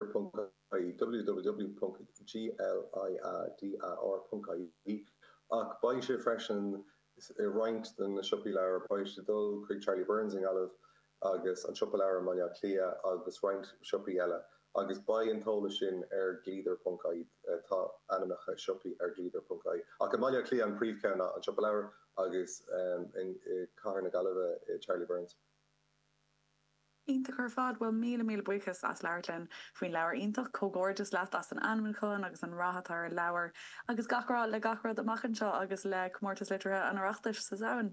www.gliadar.ie ach beidh sé freisin i roinnt de na siopaí leabhar. Beidh sé ag dul chuig Charlie Byrne's i nGaillimh agus An Siopa Leabhar i mBaile Átha Cliath agus roinnt siopaí eile agus beidh an t-eolas sin ar gliadar.ie. Tá ainmneacha siopaí ar gliadar.ie ach i mBaile Átha Cliath an príomhcheann ná An Siopa Leabhar agus i gcathair na Gaillimhe Charlie Byrne's. Iontach ar fad. Bhuel, míle míle buíochas as labhairt linn faoin leabhar iontach. Comhghairdeas leat as an ainmniúchán agus an rath atá ar an leabhar. Agus gach rath le gach rud amach anseo agus le Comórtas Liteartha an Oireachtais sa Samhain.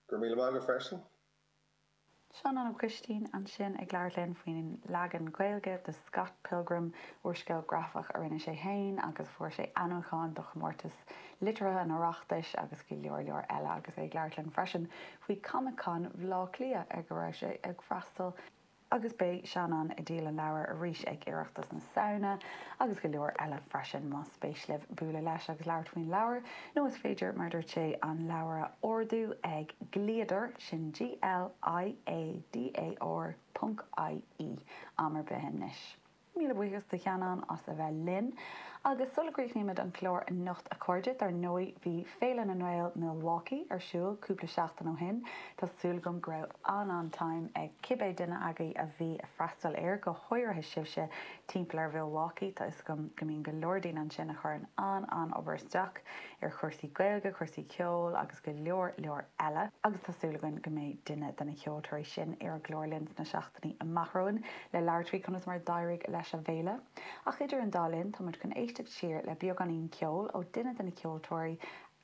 Go raibh míle maith agat freisin. Seanán Ó Coistín ansin ag labhairt linn faoin leagan Gaeilge do Scott Pilgrim, úrscéal grafach a rinne sé féin agus fuair sé ainmniúchán do chomórtas Liteartha an Oireachtais agus go leor leor eile agus é ag labhairt linn freisin faoi Comic-Con Bhleá Cliath ar go raibh sé ag freastal agus beidh Seanán ag díol an leabhair arís ag Oireachtas na Samhna agus go leor eile freisin. Más spéis libh bualadh leis agus labhairt faoin leabhar nó is féidir mar dúirt sé an leabhar a ordú ag Gliadar, sin G-L-I-A-D-A-R ponc I-E, am ar bith anois. Míle buíochas do Sheanán as a bheith linn. Agus sula gcríochnaímid an clár anocht a chairde, dar ndóigh bhí Féile na nGael Milwaukee ar siúl cúpla seachtain ó shin. Tá súil agam go raibh an-an-time ag cibé duine agaibh a bhí ag freastal air, go háirithe sibhse timpeall ar Mhilwaukee, tá 'fhios agam go mbíonn go leor daoine ansin a chuireann an-an-obair isteach ar chúrsaí Gaeilge, cúrsaí ceoil agus go leor leor eile. Agus tá súil againn go mbeidh duine de na ceoltóirí sin ar an gclár linn sna amach romhainn le labhairt faoi conas mar a d'éirigh leis an bhféile, ach idir an dá linn tá muid chun éisteacht siar le beagáinín ceoil ó duine de na ceoltóirí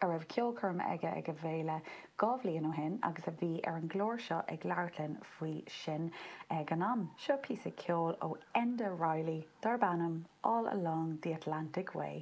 a raibh ceolchoirm aige ag an bhféile dhá bhliain ó shin agus a bhí ar an gclár seo ag labhairt linn faoi sin ag an am. Seo píosa ceoil ó Enda Reilly darb ainm 'All Along the Wild Atlantic Way'.